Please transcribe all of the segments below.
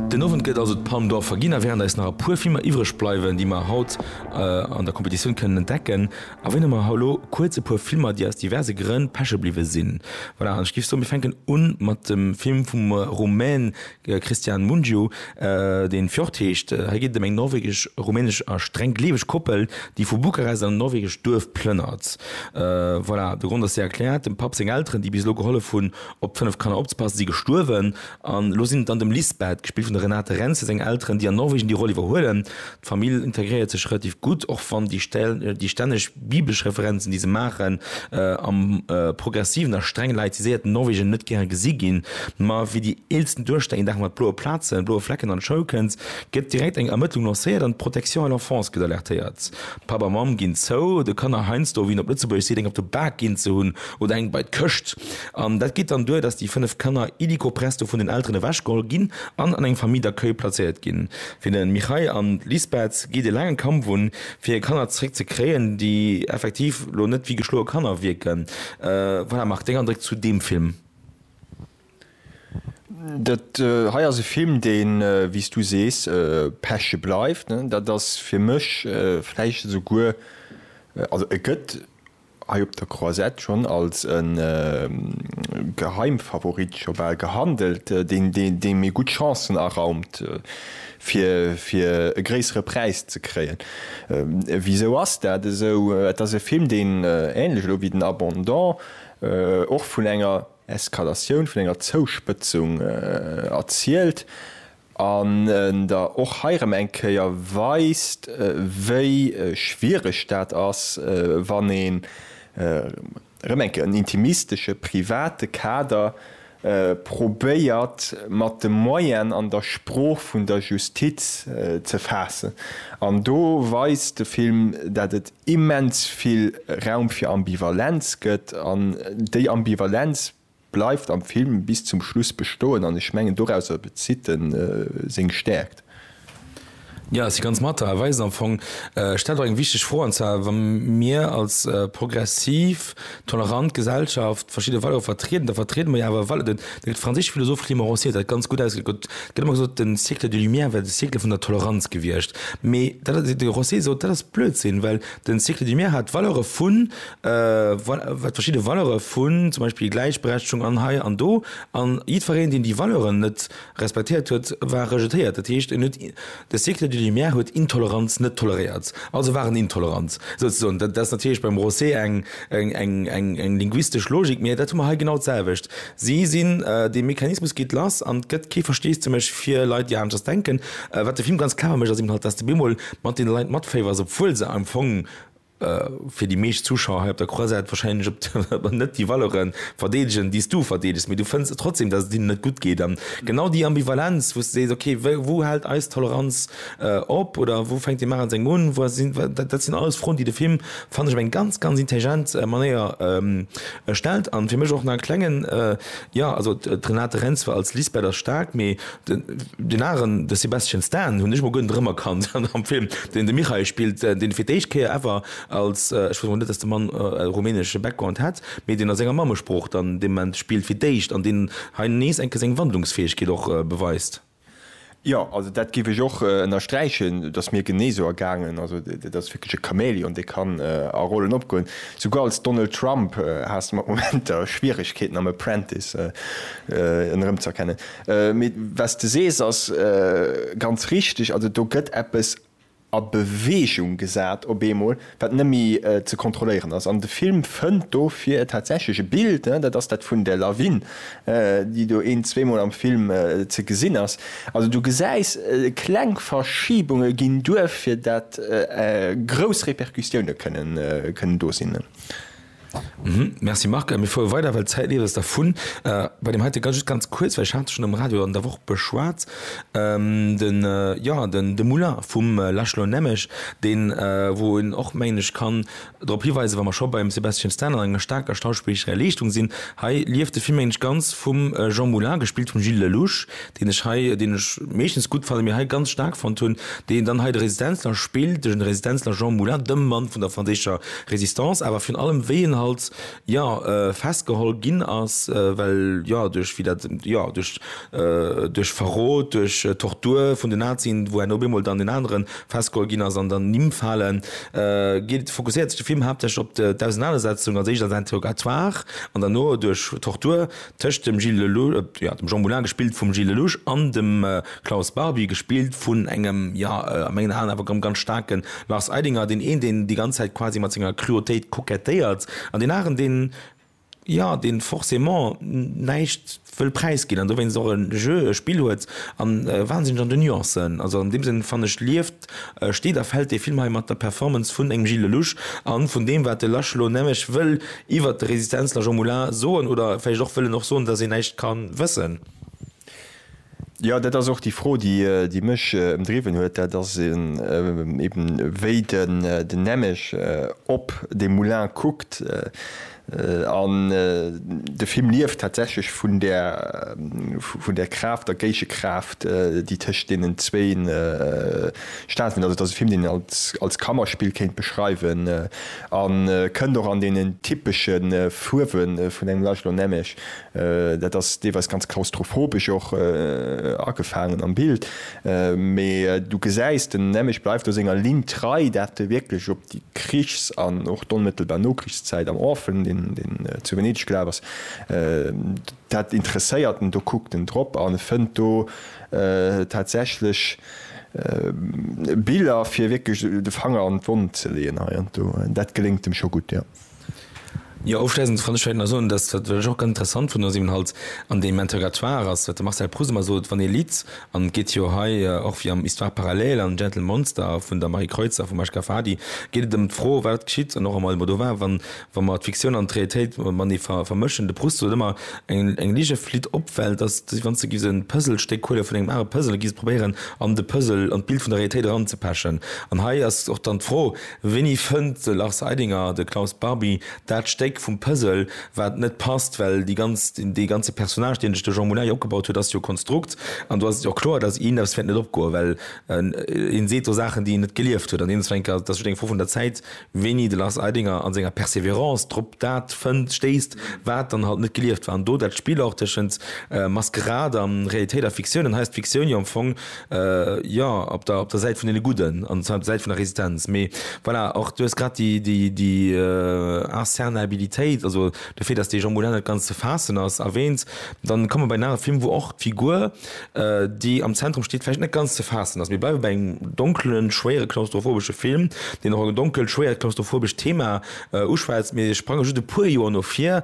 Den Owend gëtt also d'Palme d'Or verginn a wärend eis nach e puer Filmer iwwreg bleiwen, déi mer haut an der Competitioun kënnen entdecken, erwäne mer elo kuerz e puer Filmer, déi aus diverse Grënn peche bliwwe sinn. Voilà, an ech géif soen, mir fänken u mat dem Film vum Rumän Cristian Mungiu, dee Fjord heescht. Hei geet et ëm eng norwegesch-rumänesch a streng gleeweg Koppel, déi vu Bukarest an en norwegescht Duerf plënnert. Voilà, de Grond ass séier erkläert, dem Papp seng Elteren, déi bis elo gehollef hunn, Op fënnef Kanner opzepassen, si gestuerwen an elo sinn et dann dem Lisbeth, gespillt vun der Renate Rentzel, seng Elteren, déi an Norwegen déi Roll iwwerhuelen. D'Famill integréiert sech relativ gutt, och wann déi stänneg biblesch Referenzen, déi se maachen, am progressiven a streng laïciséierten Norwegen net gäre gesi ginn. Ma wéi déi eelsten Duechter een Dag mat bloe Plazen, bloe Flecken an d'Schoul kënnt, gëtt direkt eng Ermëttlung lancéiert an d'Protection à l'enfance gëtt alertéiert. Papp a Mamm ginn zou, de Kanner heiansdo, wéi een op Lëtzebuergesch seet, eng op de Bak ginn ze hunn oder eng bei d'Këscht. An dat geet dann duer, dass déi fënnef Kanner illico presto vun den Elteren ewechgeholl ginn an an eng Famille d'accueil plazéiert ginn. Fir de Mihai an d'Lisbeth geet e laange Kampf un, fir hir Kanner zeréck ze kréien, déi effektiv elo net wéi geschloe Kanner wierken. Voilà, Marc, deng Andréck zu deem Film? Dat hei ass e Film, dee wéi s du sees peche bleift. Dat ass fir mech vläicht esouguer, also e gëtt hei op der Croisette schonn als e Geheimfavorit scho bal gehandelt, dee mir gutt Chancen araumt fir e gréissere Präis ze kréien. Wisou ass dat esou? Et ass e Film, deen, änlech elo wéi den Abondant, och vun enger, Eskalatioun vun enger Zouspëtzung erzielt an en der och hei erëm eng Kéier weist, wéi schwiereg dat ass, wann ee rëm eng Kéier en intimistesche, private Kader probéiert mat de Moyen an der Sprooch vun der Justiz ze faassen. An do weist de Film, dat et immens vill Raum fir Ambivalenz gëtt an déi Ambivalenz bleift am Film bis zum Schluss bestoen an ech mengen dorauser bezitt en seng Stäerkt. Jo, ech si ganz mat der. E weist am Fong, stellt och eng wichteg Fro, an zwar wa mir als progressiv Tolerant Gesellschaft, verschidde Valeure vertrieden, da vertriede mer jo awer Vale-, den, de franséische Philosoph Clément Rosier huet dat ganz gutt ausgedréckt, et gëtt ëmmer gesot, de Siècle des Lumières wär de Siècle vun der Toleranz gewiescht. Mee dat ass, de Rosier sot, dat ass Blödsinn, well de Siècle des Lumières hat d'Valeure vun, val-, hat verschidde Valeure vun zum Beispill Gläichberechtegung an hei an do, an jiddfereen, deen déi Valeuren net respektéiert huet, war rejetéiert. Dat heescht, en huet De Cycle de Lumière huet Intoleranz net toleréiert, also war en intolerant, souzesoen. Dat ass natierlech beim Rosé eng linguistesch Logik, mee dat hu mer hei genau d'selwecht. Si sinn, dee Mechanismus geet lass an et gëtt kee Versteesdemech fir Leit, déi aneschters denken. Wat de Film ganz clever mécht, ass eben halt, dass de bemol mat deene Leit matféiwers, obwuel se am Fong fir déi meescht Zuschauer hei op der Croisette wahrscheinlech op der net déi Valeure verdeedegen, déi s du verdeedegs, mee du fënns trotzdeem, datt et hinnen net gutt geet. An genau déi Ambivalenz, wou s de sees, ok, wou hält eis Toleranz op oder wou fänkt déi Maach an sengem un, wou sinn, dat sinn alles Froen, déi de Film, fannen ech, op eng ganz, ganz intelligent Manéier stellt. An fir mech och nach e klengen, jo, also d'Renate Reinsve als Lisbeth ass staark, mee Den, den aneren, de Sebastian Stan, hunn ech mol guer net erëmerkannt an am Film, deen de Mikhail spillt, deen fir d'éischt Kéier ever als, ech wosst och net, datt de Mann e rumänesche Background hätt, mee deen a senger Mammesprooch dann dee Moment spillt fir d'éischt an deen hei nees eng Kéier seng Wandlungsfäegkeet och beweist. Jo, also dat géif ech och ënnersträichen. Et ass mir genee sou ergaangen. Also dat ass wierklech e Chamäleon, dee kann a Rollen opgoen. Souguer als Donald Trump has de mat Momenter Schwieregkeeten am Apprentice en erëmzerkennen. Mee wat s de sees ass ganz richteg. Also do gëtt eppes a Beweegung gesat op eemol, wat net méi ze kontrolléieren ass. An de Film fënnt dofir tatsächlech e Bild, dat ass dat vun der Lawin, déi do een-, zweemol am Film ze gesinn ass. Also du gesäis kleng Verschibunge ginn duer, fir dat grouss Repercussioune kënnen do sinn. Merci Marc. Mir fuere weider, well d'Zäit leeft eis dervun. Bei deem heite Gast, just ganz kuerz, well ech hat et schonn am Radio an der Woch beschwat, de, jo, de Moulin vum László Nemes, deen, wou een och, mengen ech, kann drop hiweisen, wa mer scho beim Sebastian Stan an enger staarker schauspillerescher Leeschtung sinn, hei lieft de Film, mengen ech, ganz vum Jean Moulin, gespillt vum Gilles Lellouche, deen ech hei, deen ech meeschtens gutt fannen, mee hei ganz staark fonnt hunn, deen dann hei de Resistenzler spillt, de Resistenzler Jean Moulin, de Mann vun der franséischer Résistance, awer virun allem wéi en halt, jo, festgeholl ginn ass, well, jo, duerch, wéi dat, jo, duerch, duerch Verrot, duerch Tortur vun den Nazien, wou enn op eemol dann deen aneren festgeholl ginn ass an dann Nimm falen, geet, fokusséiert sech de Film haaptsächlech op d'Ausenanersetzung als éischt als Interrogatoire an derno duerch Tortur Tëscht dem Gilles Lellouche, jo, dem Jean Moulin, gespillt vum Gilles Lellouche, an dem Klaus Barbie, gespillt vun engem, jo, a mengen Aen awer erëm ganz staarken Lars Eidinger, deen een, deen déi ganz Zäit quasi mat senger Cruautéit kokettéiert, an deen aneren, deen, jo, deen forcément näischt wëll präisginn an dowéinst och e Jeu, e Spill huet, a wahnsinneg an den Nuancen. Also an deem Sënn, fanne ech, lieft steet a fällt dee Film hei mat der Performance vun engem Gilles Lellouche a vun deem, wat de Lasch elo nämmeg wëll iwwert de Resistenzler Jean Moulin soen, oder vläicht och wëll en och soen, datt een näischt ka wëssen. Jo, dat ass och déi Fro, déi mech ëmdriwwen huet, dat ass eben, wéi den nämmeg op dee Moulin kuckt. An de Film lieft tatsächlech vun där, vun där Kraaft, der Géigekraaft, déi tëscht deenen zwéin stattfënnt. Also et ass e Film, deen een als, als Kammerspill kéint beschreiwen. A kënnt och an deenen typesche Fuerwe vun engem László Nemes. Dat ass deelweis ganz klaustrophobesch och agefaangen am Bild, mee du gesäis, den Nemes bleift do senger Linn trei, dat wierklech déi Krichs an och d'onmëttelbar Nokrichszäit am Orpheln, deen deen zu Venedeg gelaf ass, dat interesséiert en, do kuckt en drop an e fënnt do tatsächlech Biller, fir wierklech de Fanger an d'Wonn ze leeën hei an do. Dat geléngt em scho gutt, jo. Jo, ofschléissend kann ech vläicht nach soen, dass, wat ech och ganz interessant fannen, dass eeben halt an deem Interrogatoire ass, wat de Marcel Proust ëmmer sot, wann ee litt, an et geet jo hei, och wéi am Histoires parallèles an Gentle Monster vun der Marie Kreutz a vum Achka Fadi, geet et ëm d'Fro, wat geschitt, an och am Almodovar, wann, wa mer d'Fiktioun an d'Realitéit matenee ver, vermëschen. De Proust sot ëmmer, eng, eng Lige flitt op, well dass, wann s de giffs e Puzzlestéck huele vun engem anere Puzzle, giffs probéieren, an de Puzzle, an d'Bild vun der Realitéit eranzepechen. An hei ass och dann d'Fro, Wéini fënnt de Lars Eidinger, de Klaus Barbie, dat Stéck vum Puzzle, wat net passt? Well déi ganz, dee ganze Personnage, deen sech de Jean Moulin jo opgebaut huet, ass jo Konstrukt. An do ass et jo och kloer, datt him eppes wäert net opgoen, well hie seet do Saachen, déi en net gelieft huet. An deem Zwénker, dat ass just eng Fro vun der Zäit, wéini de Lars Eidinger a senger Persévérance drop dat fënnt, stéisst, wat dann halt net gelieft war. An do dat Spill och tëschent Maskerad a Realitéit a Fiktioun. An hei ass d'Fiktioun jo am Fong Jo, op der Säit vun deene Gudden an zwar op der Säit vun der Resistenz. Mee voilà, och du hues grad déi Incernaibili-téit, also de Fait, dass dee Jean Moulin net ganz ze faassen ass, erwähnt, dann komme mer bei en anere Film, wou och d'Figur, déi am Zentrum steet, vläicht net ganz ze faassen ass. Mir bleiwe bei engem donkelen, schwéiere klaustrophobesche Film, deen och e donkelt, schwéiert klaustrophobescht Thema uschwätzt. Mir sprange just e puer Joer no vir.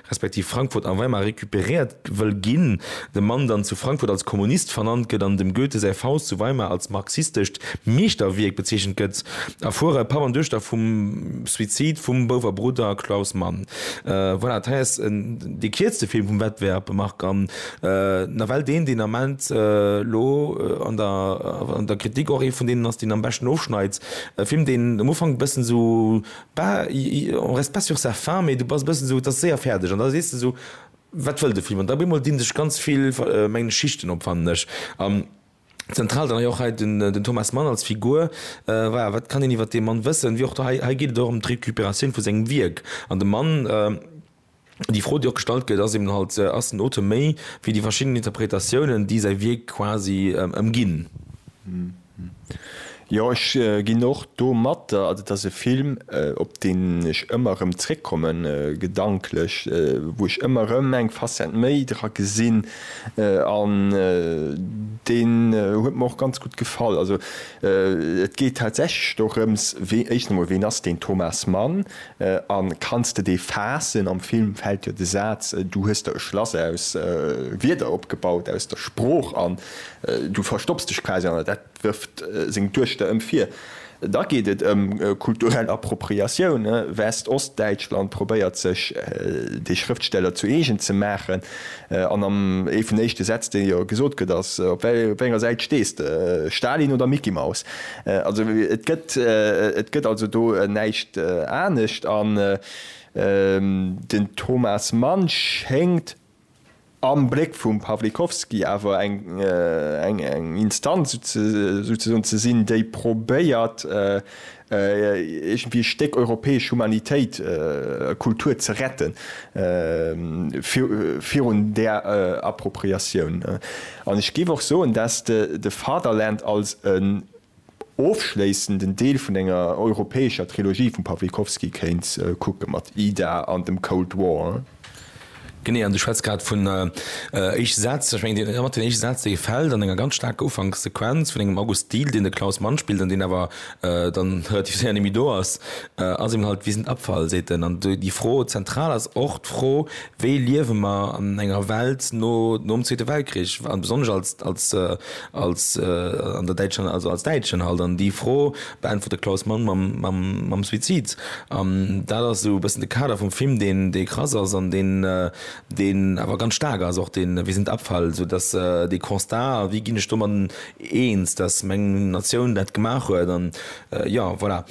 respektiv Frankfurt a Weimar recuperéiert wëll ginn, de Mann dann zu Frankfurt als Kommunist vernannt gëtt an dem Goethe säi Faust zu Weimar als marxistescht Meeschterwierk bezeechent gëtt, erfuere Papp an Duechter vum Suizid vum Bouwer Brudder Klaus Mann. Voilà, dat hei ass dee kierzte Film vum Wettbewerb, Marc, an nawell deen, deen Ament elo an der Kritik och ee vun deenen ass, deen am beschten ofschneit. E Film, deen um Ufank e bëssen esou Bah, on reste pas sur sa faim, mee du bass e bëssen esou, et ass séier fäerdeg an da sees de esou, wat wëll de Film? An da op eemol dinn sech ganz vill, mengen ech, Schichten op, fannen ech. An zentral dann hei och hei den Thomas Mann als Figur, bah, wat kann een iwwert dee Mann wëssen? Wéi och do, hei geet et och ëm d'Recuperatioun vu sengem Wierk an de Mann, Déi Fro, déi och gestallt gëtt, ass eben halt, Ass den Auteur méi wéi déi verschidden Interpretatiounen, déi säi Wierk quasi ëmginn? Jo, ech ginn och do mat. Et ass e Film, op deen ech ëmmer erëm zréckkommen, gedanklech, wou ech ëmmer erëm eng Facette méi dra gesinn. An deen huet mer och ganz gutt gefall. Also et geet tatsächlech dorëms, wéi, éischten emol, ween ass deen Thomas Mann? An kanns de dee faassen? Am Film fällt jo de Saatz, Du hues der e Schlass aus Wierder opgebaut, aus der Sprooch, an du verstopps dech quasi an der. Dat wërft seng Duechter ëm vir. Da geet et ëm kulturell Appropriatioun. West-, Ost-Däitschland probéiert sech dee Schrëftsteller zu eegen ze maachen. An am ee vun éischte Sätz, dee jo gesot gëtt, ass, Op wéi enger Säit stees de, Stalin oder Micky Maus? Also et gëtt et gëtt also do näischt anescht an den Thomas Mann schéngt am Bléck vum Pawlikowski awer eng eng eng Instanz souzesoen ze sinn, déi probéiert iergendwéi e Stéck europäesch Humanitéit, Kultur ze retten virun där Appropriatioun. An ech géif och soen, dass de Fatherland als en ofschléissenden Deel vun enger europäescher Trilogie vum Pawlikowski kéint kucken, mat Ida an dem Cold War. Genee, an du schwätz grad vun éischte Sätz. Ech mengen, ëmmer deen éischte Saz, dee fält an enger ganz staarker Ufankssequenz vun engem August Diehl, deen de Klaus Mann spillt an deen awer dann relativ séier némmi do ass, ass eben halt, Wir sind Abfall, seet en. An déi Fro zentral ass och d'Fro, Wéi liewe mer an enger Welt no nom Zweete Weltkrich, an besonnesch als, als, als, an der däitscher, also als Däitschen halt? An déi Fro beäntwert de Klaus Mann mam, mam, mam Suizid. An dat ass esou e bëssen de Kader vum Film, deen, dee krass ass an deen, deen awer ganz staark ass och, deen Wir sind Abfall, sou dass dee Constat, a wéi ginn ech domat eens, dass meng Natioun dat gemaach huet, an Jo, voilà.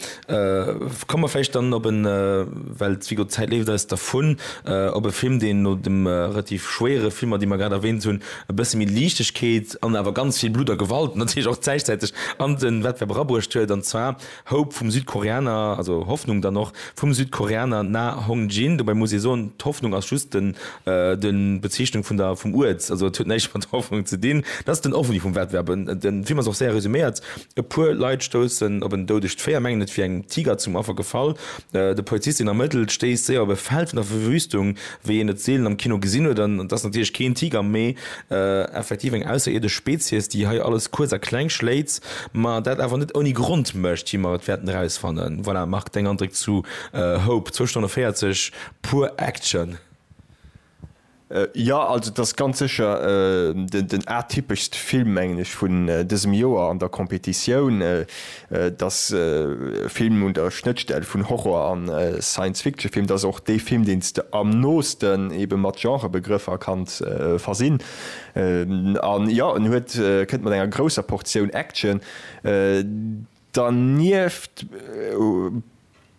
Komme mer vläicht dann op en, well d'Zwigo, d'Zäit leeft eis dervun, op e Film, deen no de relativ schwéiere Filmer, déi mer grad erwähnt hunn, e bësse méi Liichtegkeet an awer ganz vill Blutt a Gewalt natierlech och zäichzäiteg an de Wettbewerb erabruecht huet, an zwar Hope vum Südkoreaner, also Hoffnung dann och, vum Südkoreaner Na Hong-jin. Dobäi muss ee soen, d'Hoffnung ass just den, den, d'Bezeechnung vun der, vum Uert, also et huet näischt mat Hoffnung ze dinn. Dat ass den Ovni vum Wettbewerb. Den Film ass och séier resuméiert E puer Leit stoussen op en doudegt Véier, mengen et wier engem Tiger zum Affer gefall. De Polizist, deen ermëttelt, stéisst séier op e Feld vun der Verwüstung, wéi een et seelen am Kino gesinn huet. An et ass natierlech keen Tiger, mee effektiv eng ausserierdesch Spezies, déi hei alles kuerz a kleng schléit, ma dat awer net ouni Grond mécht, wéi mer et wäerten erausfannen. Voilà, Marc, deng Andréck zu Hope, zwou Stonne 40 pur Action. Jo, also et ass ganz sécher den atypeschste Film, mengen ech, vun dësem Joer an der Competitioun. Et ass e Film un der Schnëttstell vun Horror a Science-Fiction-Film. Et ass och dee Film, deen s de am noosten ebe mat Genrebegrëffer kanns versinn. An jo, en huet, kënnt mat enger grousser Portioun Action. Dernieft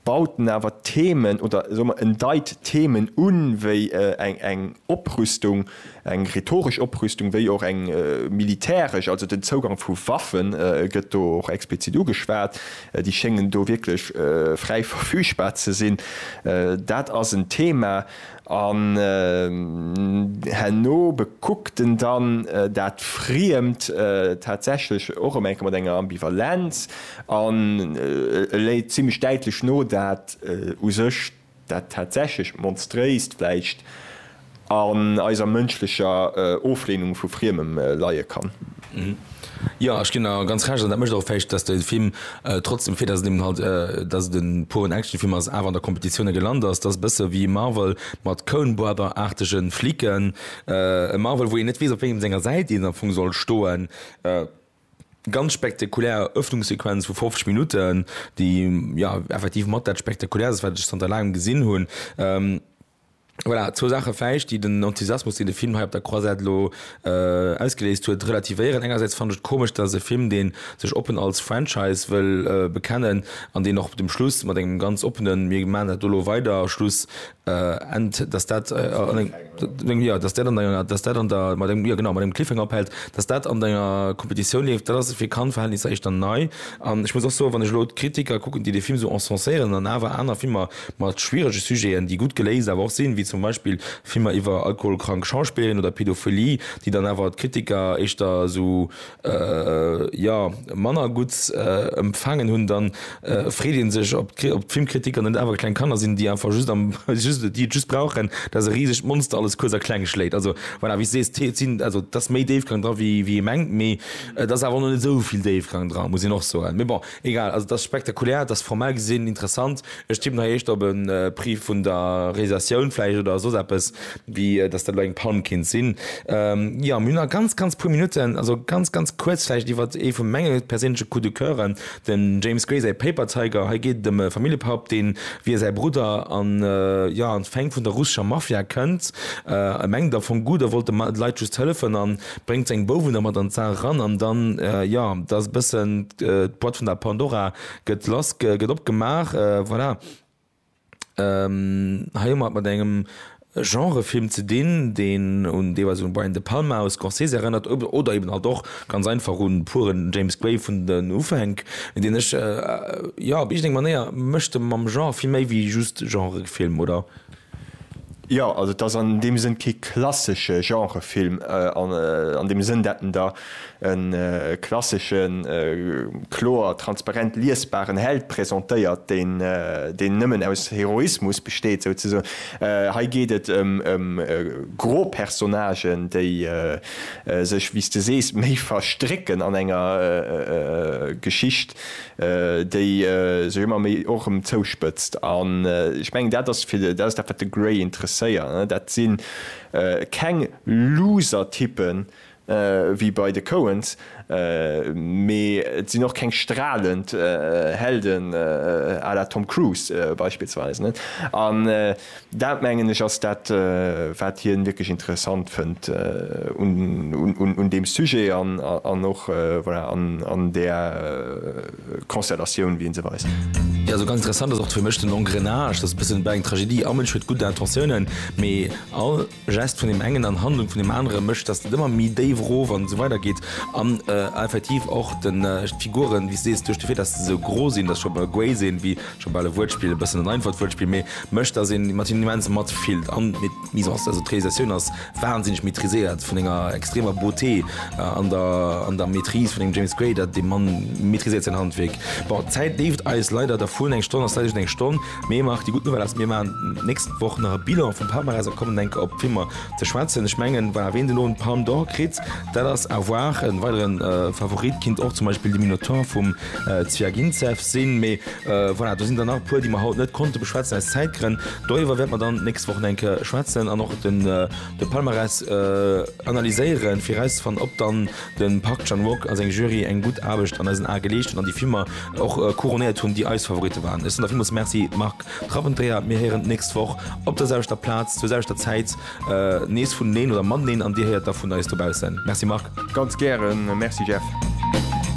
baut en awer d'Themen, oder soe mer, en deit Themen un, wéi eng Oprüstung, eng rhetoresch Oprüstung, wéi och eng militäresch, also den Zougang vu Waffe gëtt do och explizit ugeschwat, déi schéngen do wierklech fräi verfügbar ze sinn. Dat ass en Thema. An herno bekuckt en dann dat Friemt tatsächlech och ëm eng Kéier mat enger Ambivalenz an e léit zimlech däitlech no, dat u sech dat tatsächlech Monstréist vläicht an eiser mënschlecher Ofleenung vu Friemem leie kann. Jo ech ginn der ganz Recht an dat mécht och vläicht dass de Film trotzdem fir dass et eben halt dass et e puren Actionfilm ass awer an der Competitioune gelant ass. Dat ass e bësse wéi Marvel mat Coen Brother aartege Flicken. E Marvel wou een net weess op wéngem senger Säit een am Fong soll stoen. Ganz spektakulär Erëffnungssequenz vu 50 Minutten déi jo effektiv mat dat spektakulärst wat ech zanter laangem gesinn hunn. Voilà, zwou Saache vläicht, déi den Enthusiasmus, deen de Film hei op der Croisette elo ausgeléist huet, relativéieren. Engersäits fannt ech et komesch, dass e Film, dee sech oppen als Franchise wëll bekennen an deen och dem Schluss mat engem ganz oppene Mir maachen dat do elo weider Schluss endt, dass dat an engem, Cliffhanger. Jo, dass dat an enger, dass dat an der, mat engem, jo genau, mat engem Cliffhanger ophält, dass dat an enger Competitioun leeft, dat ass fir Cannes-Verhältnisser éischter nei. An ech muss och soen, wann ech elo d'Kritiker kucken, déi dee Film esou encenséieren an awer aner Filmer Mat schwierege Sujeten, déi gutt geléist awer och sinn, wéi zum Beispill Filmer iwwer alkoholkrank Schauspillerinnen oder Pädophilie, déi dann awer d'Kritiker éischter esou, jo, manner gutt empfaangen hunn, da freet ee sech, ob d'Filmkritiker net awer kleng Kanner sinn, déi einfach just, déi et just brauchen, dass e risegt Monster alles kuerz a kleng schléit. Also, voilà, wéi s de sees, et sinn, also et ass méi Déifgang dra wéi ee mengt, mee et ass awer och nach net esou vill Déifgang dra, muss een och soen. Mee bon, Egal, also et ass spektakulär, et ass formell gesinn interessant. Ech tippen hei éischter op e Prix vun der Realisatioun vläicht oder soss eppes, wéi datt dat elo eng Pann kinnt sinn. Jo, mir hunn nach ganz, ganz puer Minutten, also ganz, ganz kuerz vläicht iwwer ee vu menge perséinleche Coup de cœuren, den James Gray säi Paper Tiger. Hei geet et ëm e Familljepap, deen, wéi e säi Brudder, an, jo, an d'Fäng vun der russescher Mafia kënnt. E mengt et am Fong gutt, e wollt de Leit just hëllefen, an bréngt seng Bouwen da mat an d'Saach eran an dann, jo, da ass e bëssen, d'Boîte vun der Pandora gëtt lass, gëtt opgemaach, voilà. Hei hu mer et mat engem Genrefilm ze dinn, deen un deelweis un Brian De Palma aus Scorsese erënnert oder eben halt och ganz einfach un puren James Gray vun den Ufänk, deen ech, jo, op iergendeng Manéier mécht e mam Genre vill méi wéi just Genrefilm, oder? Jo, also et ass an deem Sënn kee klassesche Genrefilm, an deem Sënn, dat en der e klasseschen, kloer, transparent liesbaren Held presentéiert, deen nëmmen aus Heroismus besteet, souzesoen. Hei geet et ëm gro Personnagen, déi sech, wéi s de sees, méi verstrécken an enger Geschicht, déi sech ëmmer méi och erëm zouspëtzt. An ech mengen, dat ass fir de, dat ass dat, wat de Gray interesséiert, ne? Dat si keng Loser-Typpen, wéi bei de Coens, mee et sinn och keng stralend Helden à la Tom Cruise beispillsweis, ne? An. Dat, mengen ech, ass dat, wat hien wierklech interessant fënnt un deem Sujet an och, voilà, an där Constellatioun, wéi en se weist. Jo, esou ganz interessant ass och fir mech den Engrenage, dass e bëssen, bah, eng Tragedie am Mënsch huet gutt Intentiounen, mee all. Gest vun deem engen an Handlung vun deem anere mécht, dass et ëmmer méi déif erof an esou weider geet an effektiv och d'Figuren, wéi s de sees, duerch de Fait, dass se esou gro sinn, dass scho bal guéi sinn, wéi scho bal e Wuertspill, e bëssen en einfacht Wuertspill, mee mécht, dass ee mat hinnen immens matfillt an d'Mise en, also d'Realisatioun ass wahnsinneg maîtriséiert, vun enger extremer Beauté an der Maîtrise vun engem James Gray, dat dee Mann maîtriséiert säin Handwierk. Bon, d'Zäit leeft eis leider dervun, eng Stonn ass leider just eng Stonn. Mee Marc, déi gutt Nouvelle ass, mir maachen d'nächst Woch nach e Bilan vum Palmarès a kommen enk op d'Filmer ze schwätzen. Ech mengen, voilà, wien elo en d'Palme d'Or kritt, dat ass à voir. En weideren Favorit kinnt och zum Beispill de Minotaur vum Zwiagintsev sinn. Mee voilà, do sinn der nach e puer, déi mer haut net konnte beschwätzen aus Zäitgrënn. Doriwwer wäerte mer dann d'nächst Woch enk schwätzen an och de Palmarès analyséieren, fir erauszefannen, ob dann Den Park Chan Wook a seng Jury eng gutt Aarbecht an eisen Ae geleescht hunn an déi Filmer och couronéiert hunn, déi eis Favoritte waren. Ech soen der villmools Merci, Marc Trabenteier. Mir héieren d'nächst Woch op der selwechter Plaz, zur selwechter Zäit nees vuneneen oder mateneen an dir héiert da vun eis dobaussen. Merci Marc. Ganz gären. Merci Jeff.